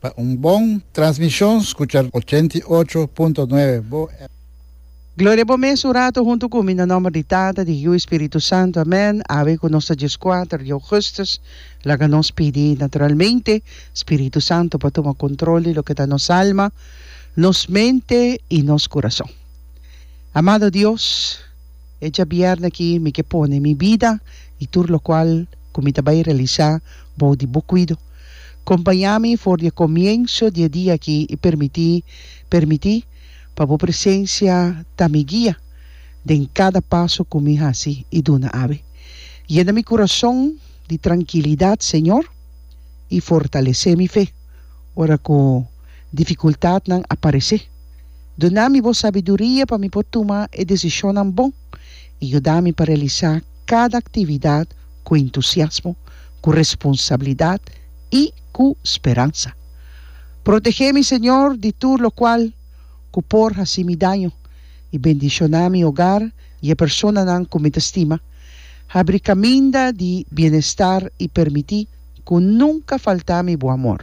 Pa un bon transmishon skucha ochenta i ocho punto nuebe Bo FM. Gloria bo mes un rato huntu ku mi na nomber di Tata, di Hijiu i Spiritu Santu. Amèn. Awe ku nos ta djes kuater di ougùstùs, laga nos pidi naturalmente Spiritu Santu pa tuma kontrol di loke ta nos alma, nos mente i nos kurason. Amado Dios. E djabièrna aki mi ke pone mi bida i tur lokual ku mi ta bai realisá bou di bo kuido. Kompañá mi for di e komienso di e dia aki i permití permití pa bo presensia ta mi guia den kada paso ku mi hasi i duna awe. Yena mi kurason di trankilidat, Señor, i fortalesé mi fe ora ku difikultatnan a paresé. Duna mi bo sabiduria pa mi por tuma e desishonnan bon i yuda mi pa realisá kada aktividat ku entusiasmo, ku responsabilidat i ku speransa. Protegé mi, Señor, di tur lokual ku por hasi mi daño, i bendishoná mi ogar i e personanan ku mi ta stima. Habri kaminda di bienestar i permití ku nunka faltá mi bo amor.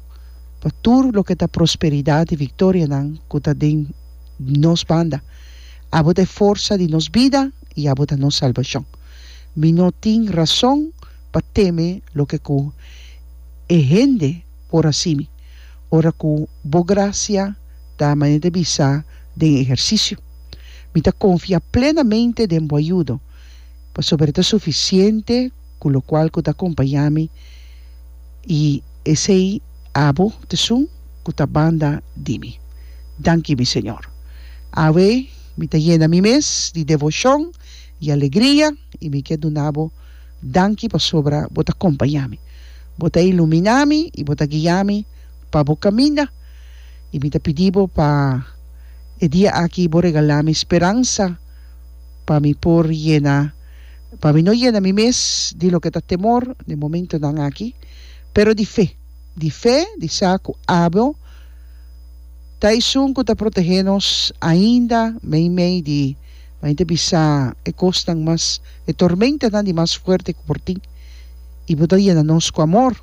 pa tur loke ta prosperidat i viktorianan ku ta den nos banda. Abo ta e forsa di nos bida i abo ta nos salbashon. Mi no tin rason pa teme loke ku e hende por hasi mi, ora ku Bo grasia ta manera di bisa den e ehersisio. Mi ta konfia plenamente den Bo ayudo, pasobra e ta sufisiente ku lokual ku ta akompañá mi. I esei abo t'esun ku ta banda di mi. Danki mi Señor. Awe mi ta yena mi mes di devoshon i alegria i mi ke duna Bo danki pasobra Bo ta kompañá mi. Bo ta ilumina mi i Bo ta guia mi pa Bo kaminda. I mi ta pidi Bo pa e dia aki Bo regala mi speransa pa mi por yena. pa mi no yena mi mes di loke ta temor den momentunan aki, pero di fe, di fe di sa ku Abo ta esun ku ta protehé nos ainda meimei di mei ta bisa e kosnan mas, e tormentanan di mas fuerte ku por tin, i Bo ta yena nos ku amor.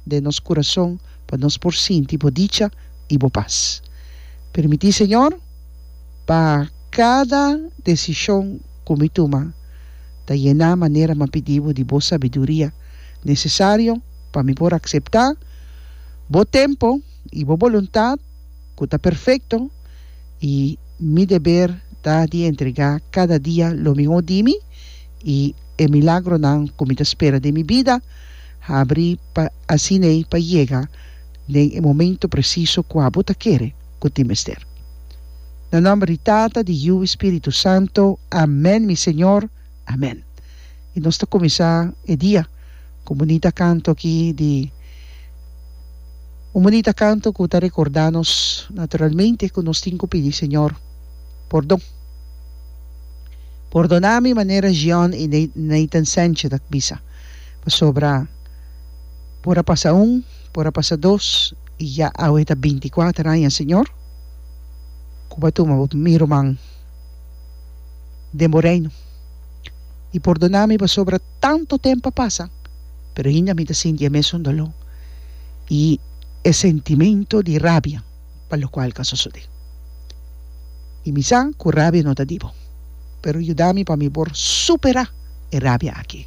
den nos kurason pa nos por sinti bo dicha i bo pas. Permití, Señor, pa kada desishon ku mi tuma ta yená manera mi a pidí bo di bo sabiduria nesesario pa mi por akseptá bo tempu i bo boluntat ku ta perfekto i mi deber ta di entregá kada dia lo mihó di mi i e milagronan ku mi ta spera den mi bida. habri pa asin'ei pa yega den e momento presiso ku abo ta kere ku tin mester. Na nòmber di Tata, di Yu i Spiritu Santo, amèn mi Señor, amèn. I nos ta kuminsá e dia ku un bunita kanto aki di un bunita kanto ku ta rekordá nos naturalmente ku nos tin ku pidi Señor pordon. Pordona mi manera Jean i Nathan Sanchez ta bisa. Pasobra por a pasa un, por a pasa dos, i ya awe ta binti kuater aña, Señor, ku bo a tuma bo mi ruman den bo reino. I pordoná mi pasobra tantu tempu a pasa, pero ainda mi ta sinti e mesun doló i e sentimentu di rabia. pa lokual ka sosodé. I mi sa ku rabia no ta di bo, pero yuda mi pa mi por superá e rabia akí.